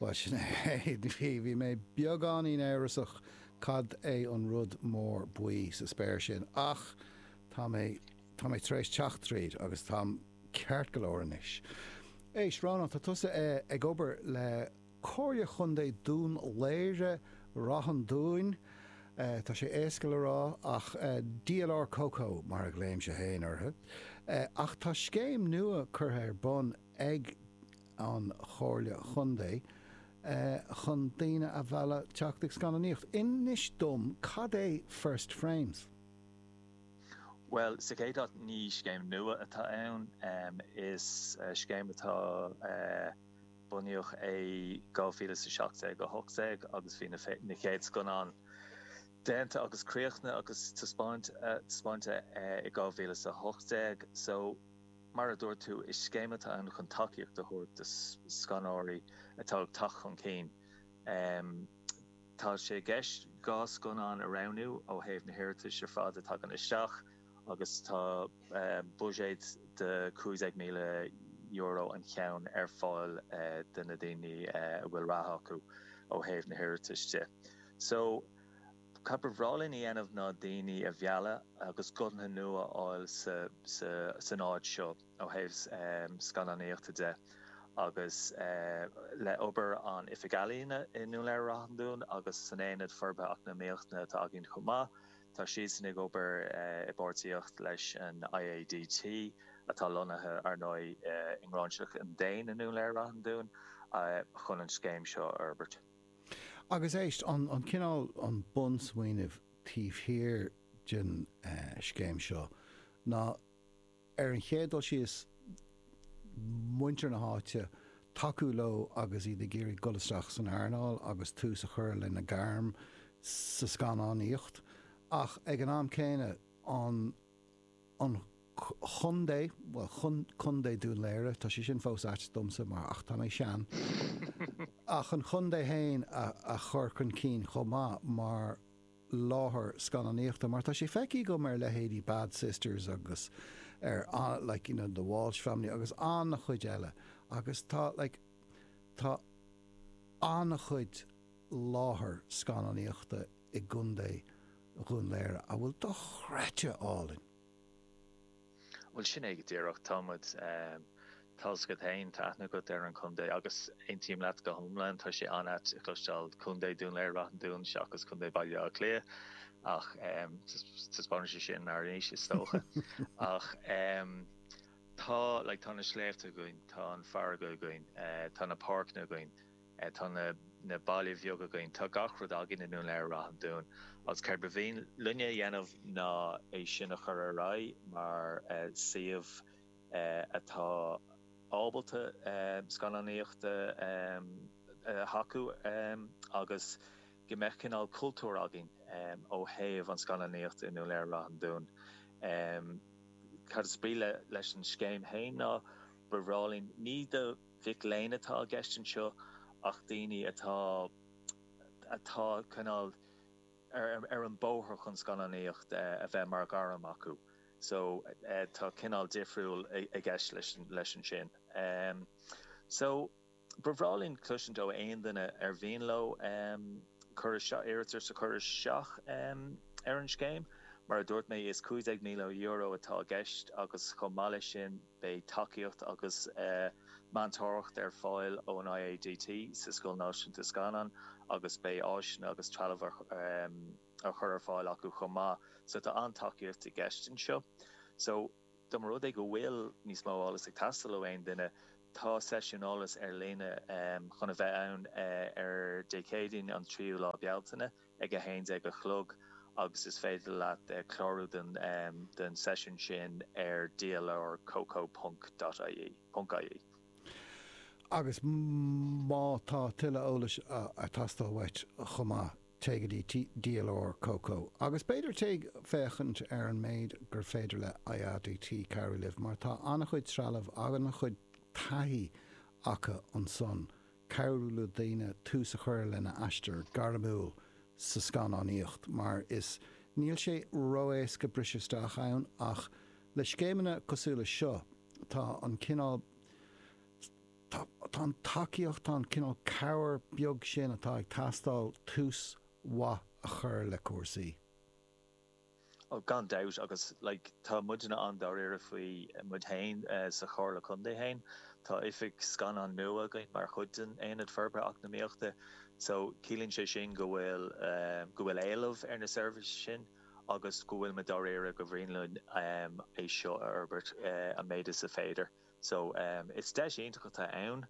Bhuel, sin é, bhí mé beagáinín amhrasach cad é an rud mór buí sa spéir sin ach tá mé, tá mé tar éis teacht tríd agus táim ceart go leor anois. Éist, Rónán, tá tusa ag obair le Comhairle Chontae Dún Laoghaire-Ráth an Dúin, tá sé éasca le rá, ach DLR Coco mar a ghlaoimse féin orthu, ach tá scéim nua curtha ar bun ag an Chomhairle Chontae chun daoine a mhealladh teacht ag scannánaíocht. Inis dom, cad é First Frames? Bhuel, sa chéad áit, ní scéim nua atá ann. Is scéim atá bunaíodh é 2017-18 agus bhí na chéad scannáin déanta agus críochnaithe agus taispeáinte i 2018. So. Mar a dúirt tú, is scéim atá ann chun tacaíocht a thabhairt do scannánóirí atá ag teacht chun cinn. Tá sé i gceist dhá scannán a roghnú ó thaobh na hiarratais ar fad a thagann isteach agus tá buiséad de €15,000 an cheann ar fáil do na daoine a bhfuil rath acu ó thaobh na hiarratais de. Cad ba bhreá linn a dhéanamh ná daoine a mhealladh agus guthanna nua a fháil san áit seo ó thaobh scannánaíochta de agus le obair an Oifig Ealaíon i nDún Laoghaire-Ráth an Dúin agus san Aonad Forbartha Eacnamaíochta atá againn chomh maith, tá siadsan ag obair i bpáirtíocht leis an IADT atá lonnaithe, ar ndóigh, i nGráinseach an Déin i nDún Laoghaire-Ráth an Dúin chun an scéim seo a fhorbairt. Agus éist, an cineál, an bunsmaoineamh taobh thiar den scéim seo ná, ar an chéad dul síos, muintir na háite, tacú leo agus iad ag iarraidh dul isteach san earnáil agus tús a chur lena gairm sa scannánaíocht ach ag an am céanna an an chontae, bhuel, contae Dún Laoghaire, tá sé sin fós ait domsa mar, ach tá mé sean! ach an chontae féin a chur chun cinn chomh maith mar láthair scannánaíochta mar tá sé feicthe agam ar leithéidí Bad Sisters agus ar like you know The Walsh Family agus an-chuid eile agus tá like tá an-chuid láthair scannánaíochta i i gContae Dhún Laoghaire a bhfuil dochreidte álainn. Bhuel, sin é go díreach. Tá muid. Tá 's agat féin, tá aithne agat ar an chontae agus aontaím leat go hiomlán, tá sé an-ait a chloisteáil Contae Dhún Laoghaire-Ráth an Dúin seachas Contae Bhaile Átha Cliath ach taispeánann sé sin ár n-aois is dócha. Ach tá, like, tá na sléibhte againn, tá an farraige againn, tá na páirceanna againn. Tá na baile bheag againn. Tá gach rud againn i nDún Laoghaire-Ráth an Dúin agus céard ba mhian linne a dhéanamh ná é sin a chur ar aghaidh mar suíomh atá ábalta scannánaíocht a thacú agus go mbeadh cineál cultúr againn ó thaobh an scannánaíocht i nDún Laoghaire-Ráth an Dúin. Cad is brí leis an scéim fhéin ná ba bhreá linn ní do mhic léinn atá i gceist anseo ach daoine atá atá cineál ar ar an bóthar chun scannánaíocht a bheith mar ghairm acu so tá cineál difriúil i gceist leis leis ansin so ba bhreá linn cloisint ó aon duine ar mhian leo cur isteach iarratas a chur isteach ar an scéim mar a dúirt mé is €15,000 atá i gceist agus chomh maith leis sin Beidh tacaíocht agus meantóireacht ar fáil ón IADT sa Scoil Náisiúnta Scannán agus beidh áiseanna agus trealamh á chur ar fáil acu chomh maith so tá an-tacaíocht i gceist anseo. So, dá mba rud é go bhfuil níos mó eolas ag teastáil ó aon duine, tá seisiún eolais ar líne chun a bheith ann ar Dé Céadaoin an 3ú lá Bealtaine, ag 11 a chlog agus is féidir leat clárú don seisiún sin ar dlrcoco.ie. Agus má tá tuilleadh eolais ag teastáil uait chomh maith, téigh go dtí dlrcoco agus b'fhéidir téigh féachaint ar an méid gur féidir le IADT cabhrú libh mar tá an-chuid trealamh, an-chuid taithí acu ansan cabhrú le daoine tús a chur lena aistear gairmiúil sa scannánaíocht mar is níl sé ró-éasca briseadh isteach ann ach le scéimeanna cosúil leis seo tá an cineál tá tá an tacaíocht tá an cineál cabhair beag sin atá ag teastáil tús mhaith a chur le cúrsaí. Oh, gan dabht, agus, like, tá muidinne an-dáiríre faoi. Muid féin sa Chomhairle Contae féin. Tá oifig scannán nua againn mar chuid den Aonad Forbartha Eacnamaíochta, so ciallaíonn sé sin go bhfuil, eh, go bhfuil éileamh ar na seirbhísí sin agus go bhfuil muid dáiríre gur mhian linn, em, é seo a fhorbairt, eh, an méid is féidir. So, em, is deis iontach atá ann.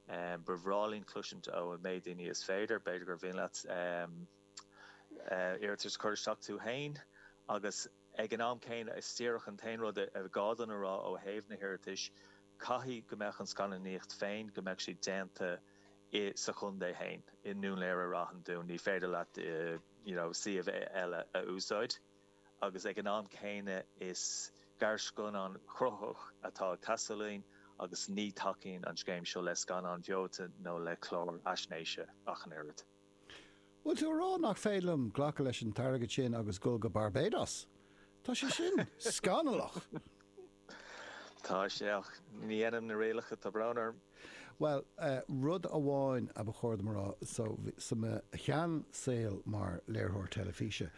Em, ba bhreá linn cloisint ó an méid daoine is féidir, b'fhéidir gur mhian leat, em, iarratas a chur isteach tú féin agus ag an am céanna is díreach an t-aon rud is gá dúinn a rá ó thaobh na hiarratais, caithfidh go mbeadh an scannánaíocht féin, go mbeadh sí déanta sa chontae féin, i nDún Léire i Ráth an Dúin, ní féidir leat you know suíomh eile a úsáid agus ag an am céanna is gearrscannán cruthaitheach atá ag teastáil uainn agus ní tacaíonn an scéim seo le scannáin bheoite nó le cláir fhaisnéise ach an oiread. Bhfuil tú ag rá nach féidir liom glacadh leis an t-airgead sin agus dhul go Barbados? Tá sé sin scannalach! Tá sé, ach ní dhéanaim na rialacha, tá brón orm. Bhuel, rud amháin a ba chóir dom a rá, so, sa mo sheansaol mar léiritheoir teilifíse,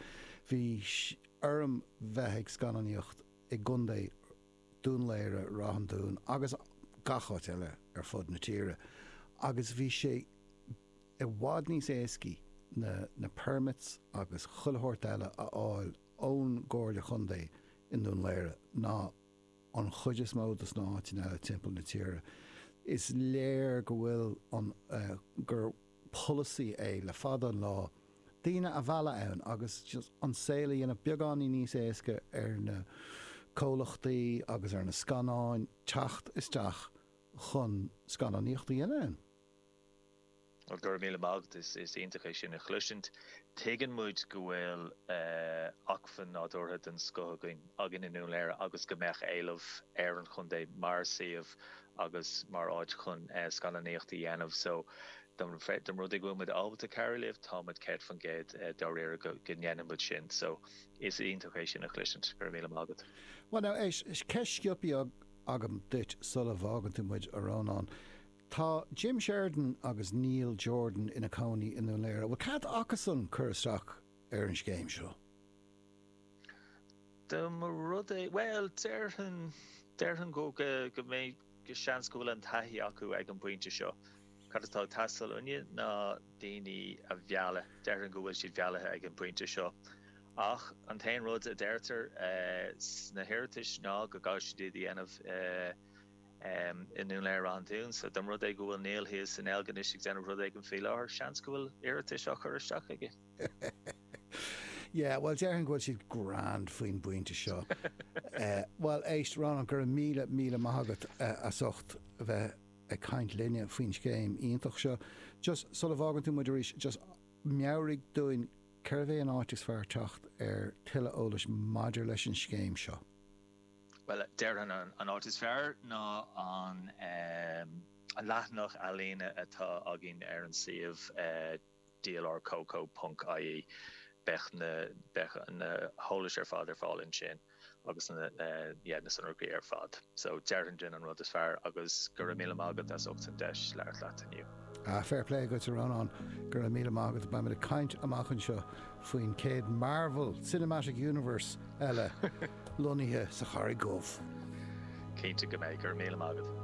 bhí orm bheith ag scannánaíocht i gContae, Dún Laoghaire, Ráth an Dúin agus gach áit eile ar fud na tíre agus bhí sé i bhfad níos éascaí na na permits agus chuile shórt eile a fháil ón gComhairle Contae i nDún Laoghaire ná an chuid is mó dos na áiteanna eile timpeall na tíre. Is léir go bhfuil an, gur, polasaí é le fada an lá daoine a mhealladh ann agus an saol a dhéanamh beagáinín níos éasca ar na comhlachtaí agus ar na scannáin teacht isteach chun scannánaíocht a dhéanamh ann. Bhuel, go raibh míle maith agat. Is iontach é sin a chloisint. Tuigeann muid go bhfuil acmhainn nádúrtha den scoth againn i nDún Léire agus go mbeadh éileamh ar an chontae mar suíomh agus mar áit chun scannánaíocht a dhéanamh so de rud go bhfuil muid ábalta cabhrú libh tá muid céad faoin gcéad dáiríre go ndéanfaidh muid sin so is iontach é sin a chloisint, go raibh míle maith agat. Bhuel now, eist, ceist sciobtha agam duit sula bhfágann tú muid, a Rónáin. Tá Jim Sheridan agus Neil Jordan ina cónaí i nDún Léire. Bhfuil cead acusan cur isteach ar an scéim seo? Dá mba rud é, bhuel, déarfainn, déarfainn go, go, go mbeidh, go seans go bhfuil an taithí acu ag an bpointe seo. Cad atá ag teastáil uainne ná daoine a mhealladh, déarfainn go bhfuil siad meallaithe ag an bpointe seo. Ach an t-aon rud a deirtear sna hiarratais ná go gcaithfidh siad iad a dhéanamh i nDún Léire Ráth an Dúin. So dá mba rud é go bhfuil Neil thíos i nDeilginis ag déanamh rud éigin faoi láthair, seans go bhfuil iarratas á chur isteach aige. Yeah, bhuel déarfainn go bhfuil siad grand faoin bpointe seo. Bhuel éist, Rónán, go raibh míle, míle maith agat as ucht a bheith ag caint linne faoin scéim iontach seo. Just sula bhfágann tú muid arís, just meabhraigh dúinn cárb é an áit is fearr teacht ar tuilleadh eolais maidir leis an scéim seo. Bhuel, déarfainn an áit is fearr ná an leathanach ealaíne atá againn ar an suíomh dlr coco ponc ie. Beidh beidh na heolais ar fad ar fáil ansin agus na yeah na sonraí ar fad. So déarfainn gurb in an rud is fearr agus go raibh míle maith agat as ucht an deis labhairt leat inniu. Ah, fair play dhuit a Rónáin, go raibh míle maith agat. Beimid ag caint amach anseo faoin chéad Marvel Cinematic Universe eile lonnaithe sa Charraig Dhubh. Cinnte go mbeidh, go raibh míle maith agat.